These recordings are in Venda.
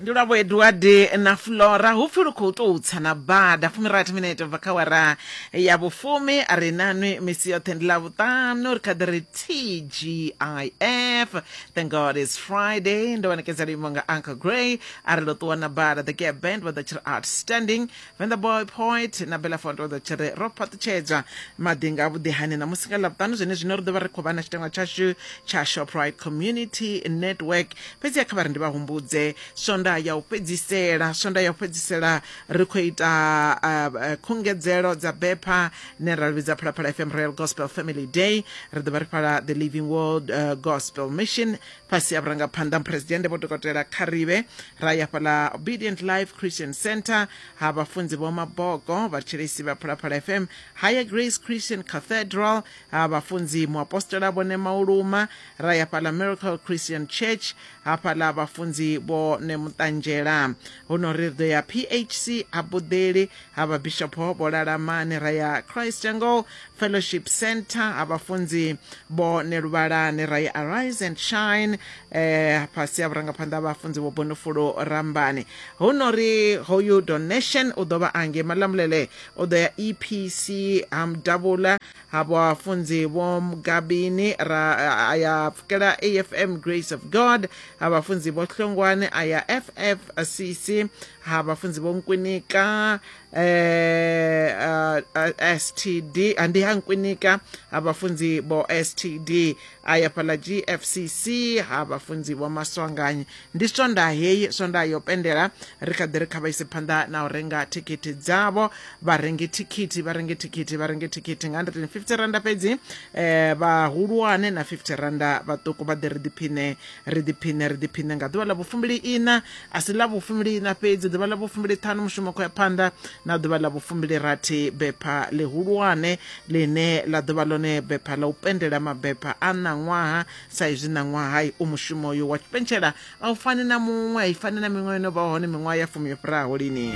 ndi lwavho edward na flora hu pfi lu khou tou tsa na bada fumirathi minete bva kha wara ya vhufumi a ri nanwi misi yoṱhe ndi ḽa vhuṱanu ri kha ḓi ri tgif thank god is friday ndo wanekedza luimo nga uncle gray a ri ḽo ṱuwa na bada the gap band vha ḓo tshi ri outstanding when the boy poet na belafondo ḓo tshi ri ro fhaṱutshedzwa maḓi nga vhuḓihani na musi nga ḽavhuṱanu zwene zwino ri ḓo vha ri khou vha na tshitengwa tshashu tsha shoprite community network fhedzi ya kha vha ri ndi vha humbudze swonda ya u fhedzisela swonda ya u fhedzisela ri khou ita uh, uh, khungedzelo dza bepha ne ra vhidza phalaphala fm royal gospel family day ri ḓo vha ri fhala the living world uh, gospel mission fhasi ha vhurangaphanḓa muphuresidennde vho dokotela kharibe ra ya fhaḽa obedient life christian center ha vhafunzi vho mabogo vhathetshelesi vha phalaphala fm higher grace christian cathedral ha vhafunzi muapostola vhone mauluma ra ya fhaḽa miracle christian church ha fhaḽa vhafunzi vho ne muṱanzhela huno ri ri ḓo ya phc ha buḓeli ha vhabishopo vho lalamani ra ya christ angle Fellowship Centre ha vhafunzi vho Neluvhalani ra ya Arise and Shine eh fhasi ha vhurangaphanḓa ha vhafunzi vho Bonofulo Rambani hu no ri hoyu donation u ḓo vha ange Malamulele u ḓo ya EPC ha Mudavhula ha vhafunzi vho Mugabini ra a ya pfukela AFM Grace of God ha vhafunzi vho Hlongwane a ya FFCC ha vhafunzi vho Nkwinika eh uh, uh, STD andihankwinika abafunzi bo STD aya fhala GFCC ha vhafunzi vho maswanganyi ndi swonda heyi swonda yo pendela ri kha ḓi ri kha vha ise phanḓa na u renga thikhithi dzavho vha renge thikhithi vha renge thikhithi vha renge thikhithi nga 150 randa fhedzi eh vhahulwane na 50 randa vhaṱuku vha ḓi ri ḓiphine ri ḓiphiṋe ri ḓiphiṋe nga ḓuvha ḽa vhufumbili ina a si ḽa vhufumbili ina fhedzi ḓuvha ḽa vhufumbili ṱhanu mushumo khou ya phanḓa na ḓuvha ḽa vhufumbili rathi bepha ḽihulwane ḽine ḽa ḓovha ḽone bepha ḽa u pendela mabepha a ṋaṅwaha sa izwi ṋaṅwaha u mushumo uyo wa tshipentshela a u fani na muṅwe a i fani na miṅwe yo no vha hone miṅwaha ya fumi yo fhiraho lini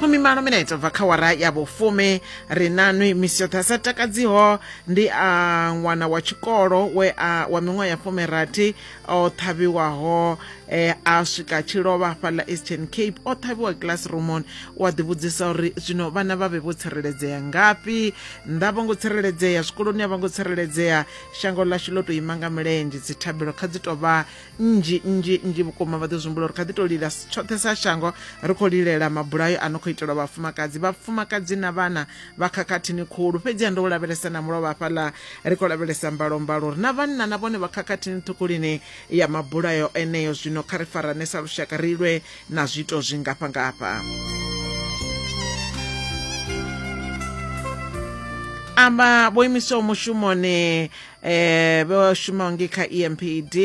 fumimalo minete bva kha wara ya vhufumi ri nanwi misi yoṱhe a sa takadziho ndi a ṅwana wa tshikolo we a wa miṅwaha ya fumirathi o ṱhavhiwaho eh, a swika tshi lovha fhaḽa eastern cape o ṱhavhiwa classroomon wa ḓivhudzisa uri zwino vhana vha vhe vho tsireledzea ngafhi nnḓa vho ngo tsireledzea zwikoloni a vho ngo tsireledzea shango ḽashu ḽo tou ima nga milenzhe dzithabelo kha dzi tou vha nnzhi nnzhi nnzhi vhukuma vha ḓo zwimbula uri kha ḓi tou lila tshoṱhe sa shango ri khou lilela mabulayo a no khou itelwa vhafumakadzi vhafumakadzi na vhana vha khakhathini khulu fhedziha ndo u lavhelesa na mulovha hafhaḽa ri khou lavhelesa mbalombalo ri na vhanna na vhone vha khakhathini ṱhukulini ya mabulayo eneyo zwino kha ri farane sa lushaka ri lwe na zwiito zwi ngafha ngafha amba vho imiswaho mushumoni eh vho shumaho ngi kha EMPD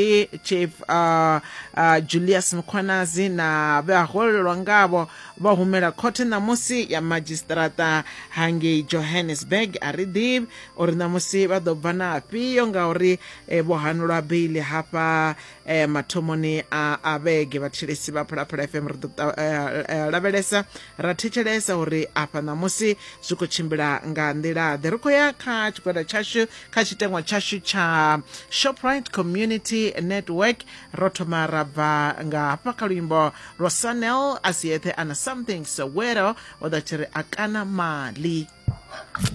chief uh, uh, Julius Mkhwanazi na vha holelwa ngavho vha humela khothe ṋamusi ya madzhisiṱiraṱa hangei johannesburg a ri ḓivhi uri ṋamusi vha ḓo bva na afhio ngauri eh, vho hanulwa beili hafha eh, mathomoni a vhege vhathetshelesi vha phalaphala fm ri ḓo eh, lavhelesa ra thetshelesa uri afha ṋamusi zwi khou tshimbila nga nḓila ḓe ri khou ya kha tshigwada tshashu kha tshitengwa tshashu tsha shoprite community network ro thoma ra bva nga hafha kha luimbo lwa sanel a si eṱhe ana something sowero o ḓa tshi ri a kana mali